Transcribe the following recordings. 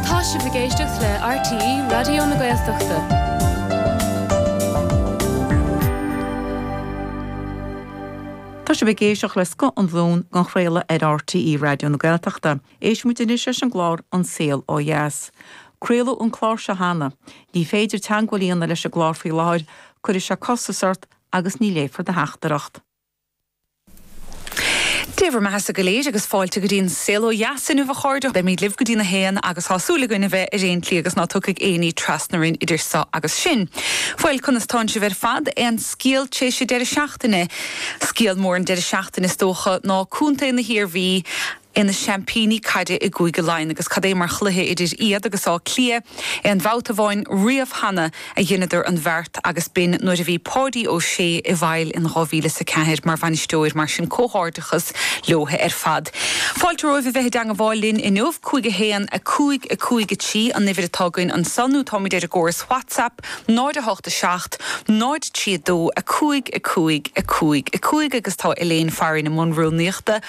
Tá sibh ag éisteacht le RTÉ Raidió na Gaeltachta. Tá sibh ag éisteacht le scoth an bhunchraolta ar RTÉ Raidió na Gaeltachta. Éistimid anois leis an gclár An Saol Ó Dheas. Craoladh an clár seo cheana. Ní féidir teagmháil a dhéanamh leis an gclár faoi láthair, cuirfidh sí costas ort agus ní léifear do theachtaireacht. Dé bhur mbeathasa go léir agus fáilte go dtí an Saol Ó Dheas inniu a chairde. Beimíd libh go dtí'n 1 agus tá súil againn a bheith ar dea-shlí agus ná tiocfaidh aon ní trasna orainn idir so agus sin. Bhuel, conas tánn sibh ar fad? Aon scial tréis an deireadh seachtaine? Scial mór an deireadh seachtaine is dócha ná Co. na hIarmhí. ina seaimpíní caide i gCúige Laighean agus cad é mar chluiche idir iad agus Áth Cliath aon babhta amháin riamh cheana a dheineadar an bheart agus b'in nuair a bhí Páidí Ó Sé ina bhfeighil in dhá mhíle is a ceathair mar bhainisteoir, mar sin comhghairdeachas leo ar fad. Fáilte romhaibh a bheith i dteangabháil linn inniu, cúig a haon a cúig a cúig a trí an uimhir atá againn anso nó táimid ar an gcóras Whatsapp, 0 8 7 0 3 2 5 5 5 5 agus tá Elaine Farry i mbun rúnaíochta.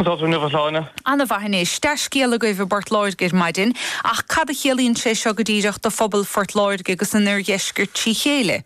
Go hana-shláine. Ana-mhaith anois. Dea-scéal agaibh i bPort Láirge ar maidin. Ach cad a chiallaíonn sé seo go díreach do phobal Phort Láirge agus an Oirdheiscirt trí chéile?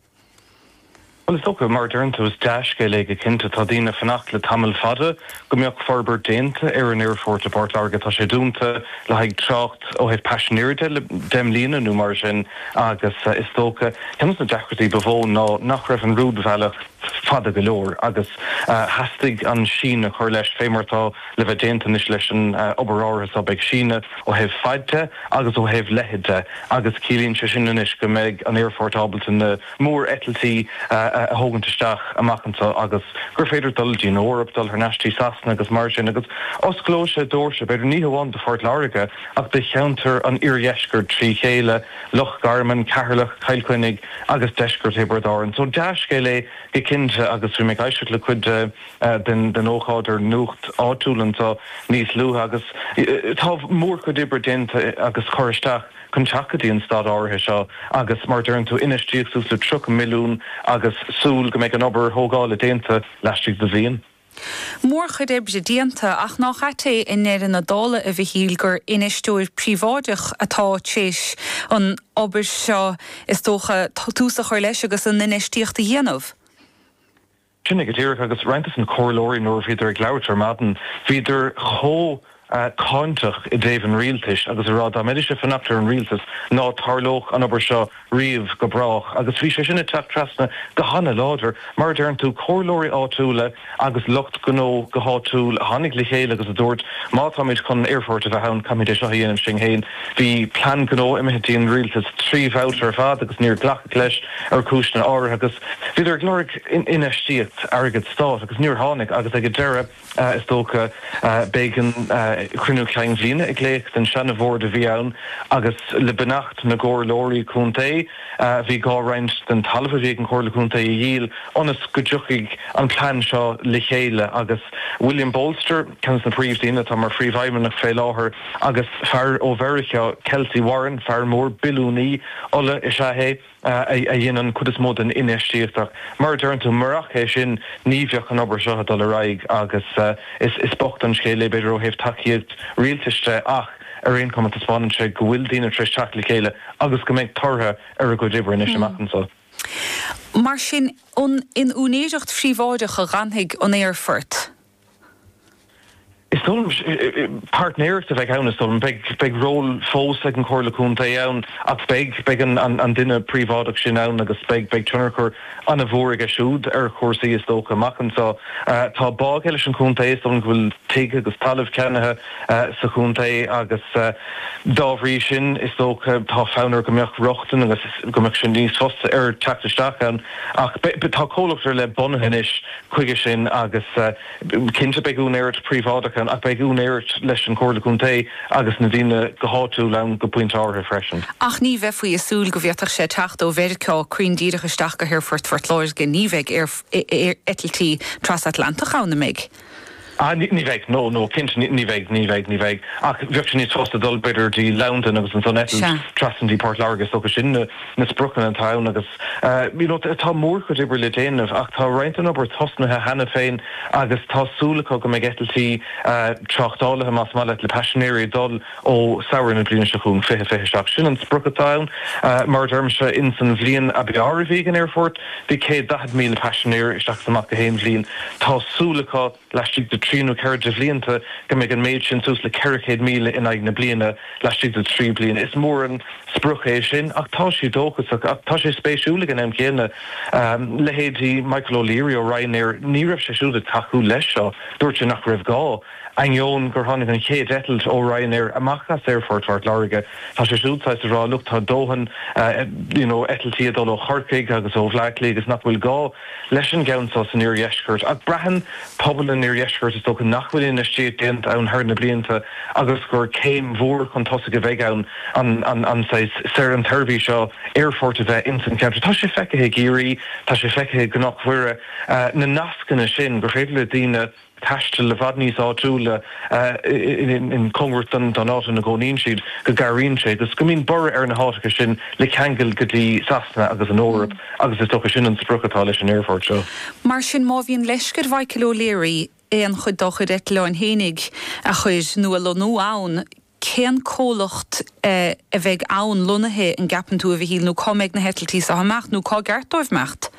Bhuel, is dócha, mar a deireann tú, is dea-scéal é go cinnte. Tá daoine ag fanacht le tamall fada go mbeadh forbairt déanta ar an aerphort i bPort Láirge. Tá sé dúnta le haghaidh trácht ó thaobh paisinéirí de le deich mbliana nó mar sin agus is dócha, ceann de na deacrachtaí ba mhó ná nach raibh an rúidbhealach, fada go leor agus theastaigh an síneadh a chur leis, fé mar atá le bheith déanta anois leis an obair áirithe so. Beidh síneadh ó thaobh faid de agus ó thaobh leithead de agus ciallaíonn sé sin anois go mbeidh an aerphort ábalta na mór-eitiltí a thógaint isteach amach anso agus gur féidir dul dtí'n Eoraip, dul thar n-ais dtí Sasana agus mar sin agus osclóidh sé dóirse, b'fhéidir ní hamháin do Phort Láirge ach do cheantar an oirdheiscirt trí chéile. Loch Garman, Ceatharlach, Cill Chainnigh agus deisceart Thiobraid Árann. So dea-scéal é go cinnte agus bhí mé ag éisteacht le cuid den ócáid ar nuacht áitiúil anseo níos luaithe agus tá mórchuid oibre déanta agus curtha isteach chun teacht go dtí an staid áirithe seo agus mar a deireann tú infheistíocht suas le 30 milliún agus súil go mbeidh an obair thógála déanta laistigh de bhliain. Mórchuid oibre déanta, ach nách ait é i ndeireadh na dála, a Mhichíl, gur infheisteoir príobháideach atá t'réis an obair seo, is dócha, tús a chur leis agus an infheistíocht a dhéanamh? Sin é go díreach, agus roinnt des na comhairleoirí nuair a bhíodar ag labhairt ar maidin, bhíodar chomh. cáinteach i dtaobh an rialtais agus a rá dá mbeidís ag fanacht ar an rialtas ná tarlódh an obair seo riamh go brách agus bhí sé sin ag teacht trasna go hana-láidir. Mar a deireann tú, comhairleoirí áitiúla agus lucht gnó go háitiúil a tháinig le chéile agus a dúirt má táimid chun an aerfort a bheith ann caithfimid é seo a dhéanamh sinn féin. bhí plean gnó imithe dtí an rialtas trí bhabhta ar fad agus níor glacadh leis ar chúiseanna áirithe agus bhíodar ag lorg infheistíocht, airgead stáit, agus níor tháinig agus ag an deireadh. Is dócha. bhí an cruinniú ceann bliana ag glaoch don seana bhord a bhí ann agus le beannacht na gcomhairleoirí contae bhí gá roinnt den talamh a bhí ag an chomhairle contae a dhíol ionas go dtiocfaidh an plean seo le chéile agus William Bolster, ceann des na príomhdhaoine atá mar phríomhfheidhmeannach fé láthair agus fear ó Mheiriceá, Kelcy Warren, fear mór, billiúnaí ola is ea é. a dhein an chuid is mó den infheistíocht ach mar a deireann tú, marach é sin ní bheadh an obair seo ag dul ar aghaidh agus is bocht an scéal é b'fhéidir ó thaobh tacaíocht rialtais de ach ar aon chuma taispeánann sé go bhfuil daoine tar éis teacht le chéile agus go mbeidh tortha ar a gcuid oibre anois amach anso. Mar sin, in úinéireacht phríobháideach a fhanfaidh an aerfort? Is dóigh liom, páirtnéireacht a bheidh ann, is dóigh liom. Beidh, beidh ról fós ag an Chomhairle Contae ann ach beidh beidh an duine príobháideach sin ann agus beidh beidh tionchar an-mhór aige siúd ar chúrsaí, is dócha, amach anseo. Tá bá aige leis an chontae, is dóigh liom go bhfuil tigh agus talamh ceannaithe sa chontae agus dá bhrí sin, is dócha, tá fonn air go mbeadh rochtain agus go mbeadh sé níos fusa air teacht isteach ann. Ach tá comhlacht ar leith bunaithe anois. Chuige sin, agus cinnte beidh úinéireacht phríobháideach ann, ach beidh úinéireacht leis an Chomhairle Contae agus na daoine go háitiúil ann go pointe áirithe freisin. Ach ní bheifí ag súil go bhféadfadh sé teacht ó Mheiriceá cruinn díreach isteach go haerfort Phort Láirge, ní bheidh eitiltí trasatlantach ann an mbeidh. Ah, ní bheidh. No, no, cinnte ní bheidh, ní bheidh, ní bheidh. Ach bheadh sé níos fuirste dul, b'fhéidir, dtí Londain agus ansan eitilt trasna dtí Port Láirge. Is dócha sin na spriocanna atá ann agus you know tá mórchuid oibre le déanamh ach tá roinnt den obair tosnaithe cheana féin agus tá súil acu go mbeidh eitiltí tráchtálaithe, más maith leat, le paisinéirí ag dul. ó Shamhradh na bliana seo chugainn, 2027. Sin an sprioc atá ann. Mar a deirimse, ins an bhliain ab fhearr a bhí ag an aerfort, bhí 140,000 paisinéir isteach is amach in aon bhliain. Tá súil acu, laistigh de thrí nó ceithre de bhlianta, go mbeidh an méid sin suas le 400,000 in aghaidh na bliana, laistigh de thrí bliana. Is mór an sprioc é sin, ach tá sé dóchasach. Ach tá sé spéisiúil, ag an am chéanna, leithéidí Michael O'Leary ó Ryanair, ní raibh sé siúd ag tacú leis seo. Dúirt sé nach raibh gá. Ainneoin gur tháinig an chéad eitilt ó Ryanair amach as Aerfort Phort Láirge, tá sé siúd sásta a rá, Look, tá dóthain you know eitiltí ag dul ó Chorcaigh agus ó Bhleá Cliath agus nach bhfuil gá leis an gceann seo san oirdheisceart. Ach braitheann pobal an oirdheiscirt, is dócha, nach bhfuil infheistíocht déanta ann thar na blianta agus gur céim mhór chun tosaigh a bheidh ann an tseirbhís seo aerfoirt a bheith ins an cheantar. Tá sé feicthe i gCiarraí, tá sé feicthe i gCnoc Mhuire, na nascanna sin gur féidir le daoine, taisteal i bhfad níos áitiúla i gcomórtas don áit ina gcónaíonn siad, go gcabhraíonn sé, agus go mbíonn borradh ar na háiteacha sin, le ceangal go dtí Sasana agus an Eoraip, agus is dócha sin an sprioc atá leis an aerfort seo. Mar sin, má bhíonn leisce ar Mhichael O'Leary aon chuid dá chuid eitleáin fhéinig a chur nó a lonnú ann, cén comhlacht a bheidh ann, lonnaithe, an gceapann tú, a Mhichíl, nó cá mbeidh na heitiltí seo ag imeacht, nó cár cheart dóibh imeacht?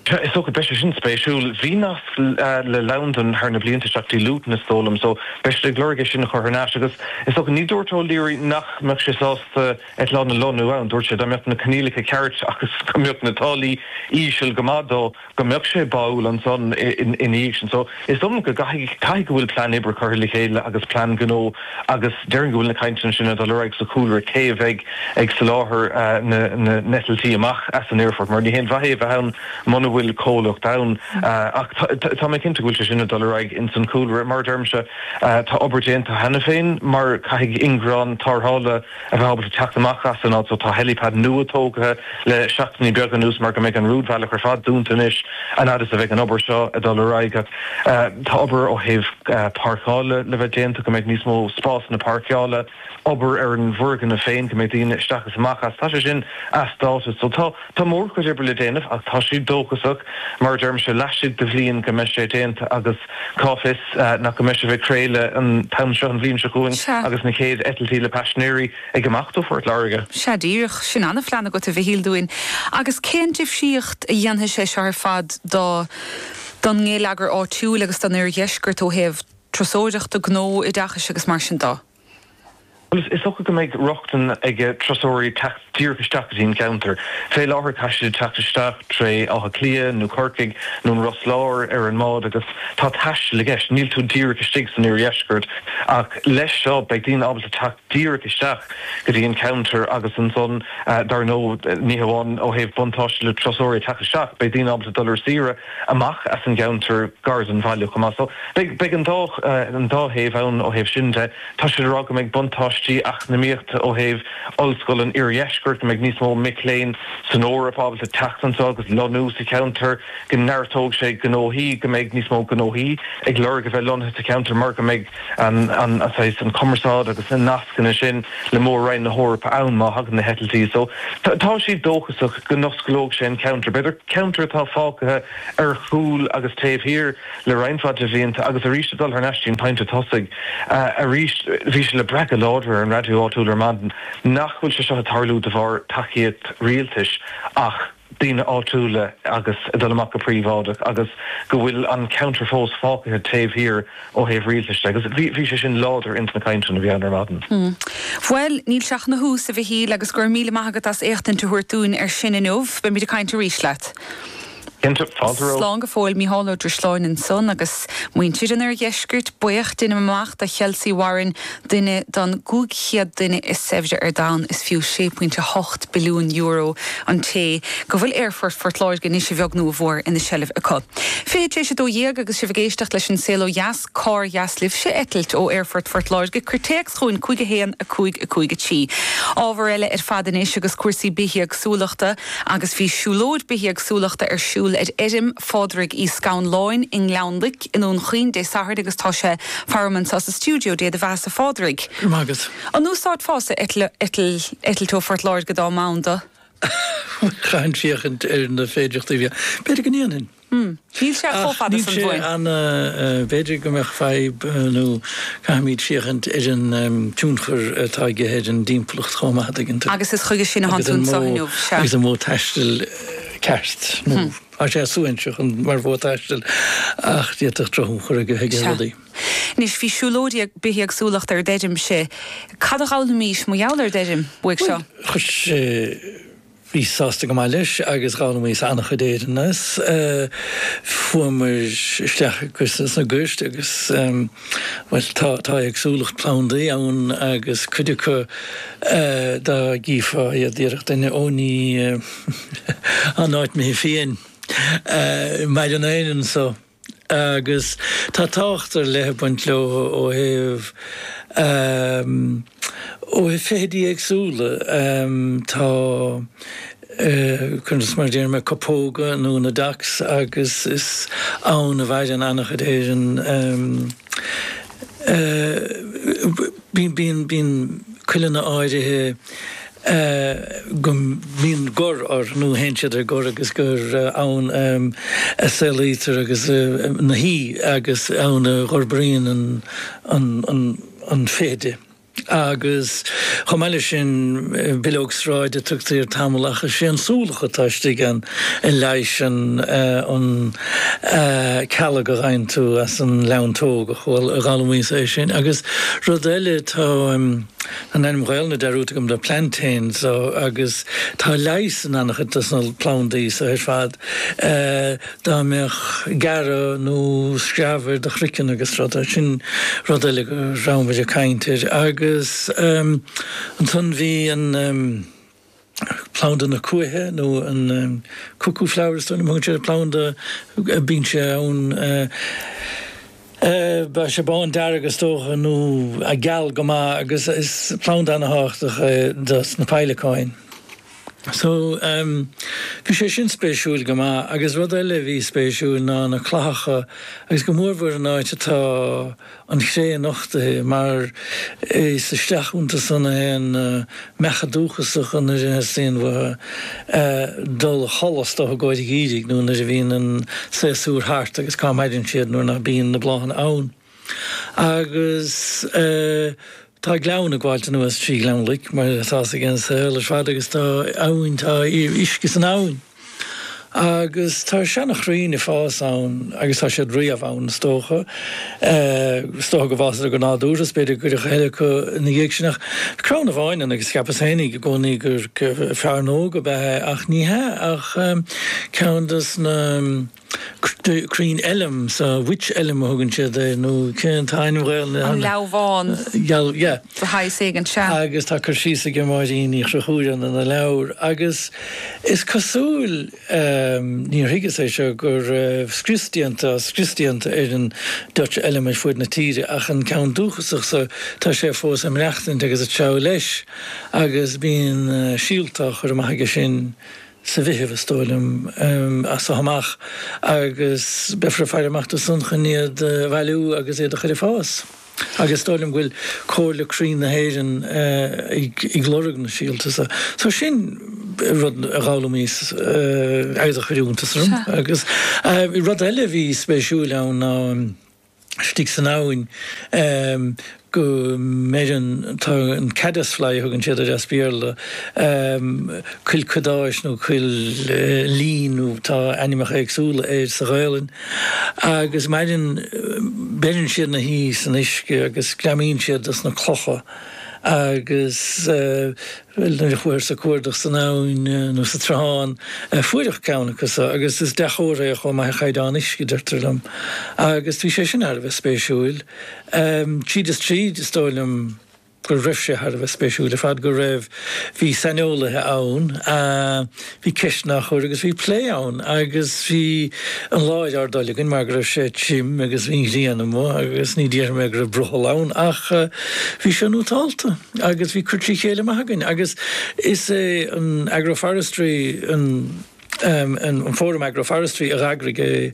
Sea, is dócha, beidh sé sin spéisiúil. Bhí nasc le Londain thar na blianta, isteach go dtí Luton is dóigh liom, so beidh siad ag lorg é sin a chur thar n-ais, agus is dócha, ní dúirt O'Leary nach mbeadh sé sásta eitleáin a lonnú ann, dúirt sé dá mbeadh na coinníollacha ceart agus go mbeadh na táillí íseal go maith dó. go mbeadh sé báúil ansan ina dhiaidh sin. So, is dóigh liom go gcaithfidh, caithfidh go bhfuil plean oibre curtha le chéile agus plean gnó agus déarfainn go bhfuil na cainteanna sin ag dul ar aghaidh sa chúlra, cé a bheidh ag soláthar na n-eitiltí amach as an aerfort mar ní haon mhaith é a bheith ann muna bhfuil comhlacht ann ach tá mé cinnte go bhfuil sé sin ag dul ar aghaidh ins an chúlra. Mar a deirimse, tá obair déanta cheana féin mar caithfidh ingearán tarrthála, a bheith ábalta teacht amach as an áit so. Tá helipad nua tógtha le seachtainí beaga anuas mar go mbeidh an rúidbhealach ar fad dúnta anois an fhad is a bheidh an obair seo ag dul ar aghaidh. Tá obair ó thaobh páirceála le bheith déanta go mbeidh níos mó spásanna páirceála, obair ar an bhfoirgneamh féin go mbeidh daoine isteach is amach as, tá sé sin as dáta so tá. Tá mórchuid oibre le déanamh ach tá siad dóchasach, mar a deirimse, laistigh de bhliain go mbeidh sé déanta agus cá bhfios nach go mbeidh sibh ag craoladh an t-am seo an bhliain seo chugainn Sea. agus na chéad eitiltí le paisinéirí ag imeacht ó Phort Láirge. Sea, díreach. Sin an-phlean agat, a Mhichíl, dúinn. Agus cén difríocht a dhéanfaidh sé seo ar fad do don ngeilleagar áitiúil agus don oirdheisceart ó thaobh turasóireachta, gnó, oideachais agus mar sin de? Is dócha go mbeidh rochtain ag turasóirí teacht díreach isteach go dtí an ceantar. Fé láthair caithfidh siad teacht isteach tré Áth Cliath nó Corcaigh nó an Ros Láir ar an mbád agus tá taisteal i gceist, níl tú díreach istigh san Oirdheisceart. Ach leis seo beidh daoine ábalta teacht díreach isteach go dtí an ceantar agus ansan dar ndóigh ní hamháin ó thaobh buntáiste le turasóirí teacht isteach beidh daoine ábalta dul ar saoire amach as an gceantar gar don bhaile chomh maith. So beidh an dá an dá thaobh ann ó thaobh sin de. Tá siad ag rá go mbeidh buntáistí eacnamaíochta ó thaobh Ollscoil an Oirdheiscirt, go mbeidh níos mó mic léinn ón Eoraip ábalta teacht anseo agus lonnú sa cheantar, go neartóidh sé gnóthaí, go mbeidh níos mó gnóthaí ag lorg a bheith lonnaithe sa cheantar mar go mbeidh. an saghas an cumarsáid agus na nascanna sin le Mór-Roinn na hEorpa ann má thagann na heitiltí so tá siad dóchasach go n-osclóidh sé an ceantar. B'fhéidir ceantar atá fágtha ar chúl agus taobh thiar le roinnt mhaith de bhlianta agus arís ag dul thar n-ais dtí an pointe tosaigh arís. Bhí sé le brath go láidir ar an raidió áitiúil ar maidin nach bhfuil sé seo ag tarlú de bharr tacaíocht rialtais ach. daoine áitiúla agus ag dul amach go príobháideach agus go bhfuil an ceantar fós fágtha taobh thiar ó thaobh rialtais de agus bhí sé sin láidir ins na cainteanna a bhí ann ar maidin. Bhuel, níl sé ach ina thús, a Mhichíl, agus go raibh míle maith agat as éachtaint a thabhairt dúinn air sin inniu. Beimid ag caint arís leat. Cinnte, fáilte romhat. Slán go fóill, Micheál Ó Drisleáin ansan, agus muintir an Oirdheiscirt, buíoch, deinim amach, do Chelsea Warren, Duine den 500 duine is saibhre ar domhan, is fiú €6.8 billiún an té go bhfuil Aerfort Phort Láirge anois a bheag nó a mhór ina sheilbh acu. Fiche tar éis a dó dhéag agus sibh ag éisteacht leis An Saol Ó Dheas, Cár dheas libhse eitilt ó Aerfort Phort Láirge? Cuir téacs chugainn 5 1 5 5 3. Ábhar eile ar fad anois agus cúrsaí bithéagsúlachta agus bhí siúlóid bithéagsúlachta ar siúl ar fheirm Phádraig Uí Scanláin i nGleann i nDún Chaoin Dé Sathairn agus tá sé faram anso sa stiúideo. Dé do bheathasa a Phádraig. Go raibh maith agat. An n-úsáidfeása eitilt ó Phort Láirge dá mb'ann dó? Chaithfinn féachaint ar na féidireachtaí a bhí ann. B'fhéidir go ndéanfainn. Níl sé chomh fada san uainn. Ach níl sé ana, b'fhéidir go mbeadh fadhb nó caithfimid féachaint ar an tionchar atá aige ar an dtimpeallacht chomh maith, a dtuigeann tú. Agus is chuige sin a tháinig tú anseo inniu, sea. Agus an modh taistil ceart nó. Tá sé an-áisiúil mar mhodh taistil, ach d'fhéadfadh drochthionchar a bheith aige ar Sea. rudaí. Anois, bhí siúlóid bithéagsúlachta ar d'fheirm, sea, cad a d'fhoghlaimís mar gheall ar d'fheirm uaidh seo? Bhuel, chuir sé, bhíos sásta go maith leis agus d'fhoghlaimíos an-chuid, ar ndóigh, as. Fuaireamar isteach sna goirt agus, bhuel, tá éagsúlacht plandaí ann agus cuid acu dá gcífeá iad díreach duine, ó ní, ná ní mé féin maidir lena n-ainm anso agus tá tábhacht ar leith ag baint leo ó thaobh ó thaobh feithidí éagsúla. Tá, cuir i gcás, mar a déarfaidh mé copóga nó na docks agus is ann a mhaireann an-chuid ar an. Bíonn cuileanna áirithe go mbíonn gor orthu, nó théann siad ar gor, agus gur ann a saolaítear agus na huibhe agus ann a dh'fhorbraíonn an fheithide. Agus chomh maith leis sin, bileog sráide a tugtaí air tamall ach is é an súlach atá istigh ann a leigheasann an cealg a dh'fhaigheann tú as an neantóg. Ach bhuel, dh'fhoghlaimíos é sin. Agus rud eile, tá an ainm Ghaelainne dearúdta agam do, Plantain, so, agus tá leigheas in an-chuid dos na plandaí so ar fad. Dá mbeadh gearradh nó screamh ar do chroiceann agus rud, sin rud eile go rabhamair ag caint air. Agus ansan bhí an planda na cuaiche nó an cuckoo flower, is dóigh liom a thugann siad ar an bplanda a bíonn sé ann, bheadh sé bándearg is dócha nó geal go maith agus is planda ana-thábhachtach é dos na peidhleacáin. So, bhí sé sin spéisiúil go maith agus rud eile a bhí spéisiúil ná na clathacha agus go mórmhór an áit atá an chré nochtaithe mar is isteach iontu san a théann na meacha dúchasacha nuair a theastaíonn uathu dul a chodladh, is dócha i gcomhair an gheimhridh, nó nuair a bhíonn an saosúr thart agus cá maireann siad nuair ná bíonn na bláthanna ann. Agus tá gleann ag gabháilt anuas trí Ghleann Loic, mar atá a fhios againn le fada, agus tá abhainn, tá uisce san abhainn. Agus tá seanachrainn ag fás ann, agus tá siad riamh ann is dócha. Is dócha go bhfásadar go nádúrtha, is b'fhéidir gur cuireadh a thuilleadh acu ina dhiaidh sin, ach crann amháin ann, agus cheapas féin i gcónaí gur fearnóg ab ea é, ach ní hea, ach ceann dos na. crainn elm so wych elm a thugann siad air nó cén t-ainm Ghaelainne. An leamhán. Geal, yeah. The High Sagan Sha. Agus tá cur síos ag Máirín Uí Chonchubhair ina leabhar agus is cosúil, níor thuigeas é seo, gur scrios déanta, scrios déanta ar an Dutch elm ar fud na tíre ach an ceann dúchasach so tá sé fós ag maireachtaint agus ag treabhadh leis agus bíonn síolta á chur amach aige sin sa Mheitheamh, is dóigh liom, as seo amach, agus beifear ag faire amach dó san chun iad a bhailiú agus iad a chur ag fás. Agus is dóigh liom go bhfuil Comhairle Crainn na hÉireann ag lorg na síolta so. So sin rud a dh'fhoghlaimíos agus a chuir iontas orm. Agus rud eile a bhí spéisiúil ann ná. istigh san abhainn go maireann, tá an caddisfly a thugann siad air as Béarla, cuil cadáis nó cuil lín nó tá ainmneacha éagsúla air sa Ghaelainn, agus maireann, beireann siad na huibhe san uisce agus greamaíonn siad dos na clocha agus. Bhuel, nuair a chuathas ag cuardach san abhainn nó sa tsruthán, fuaireadh ceann acu so, agus is dea-chomhartha é chomh maith ar chaighdeán uisce, deirtear liom. Agus bhí sé sin thar a bheith spéisiúil. Tríd is tríd, is dóigh liom go raibh sé thar a bheith spéisiúil ar fad go raibh, bhí saineolaithe ann a, Bhí ceisteanna á chur agus bhí plé ann agus bhí an lá ar ár dtoil againn mar go raibh sé tirim agus bhí an ghrian amuigh agus ní déarfaidh mé go raibh brothall ann ach bhí sé nótálta agus bhí cur trí chéile maith againn agus is é an agroforestry an fóram agroforestry a d'eagraigh é.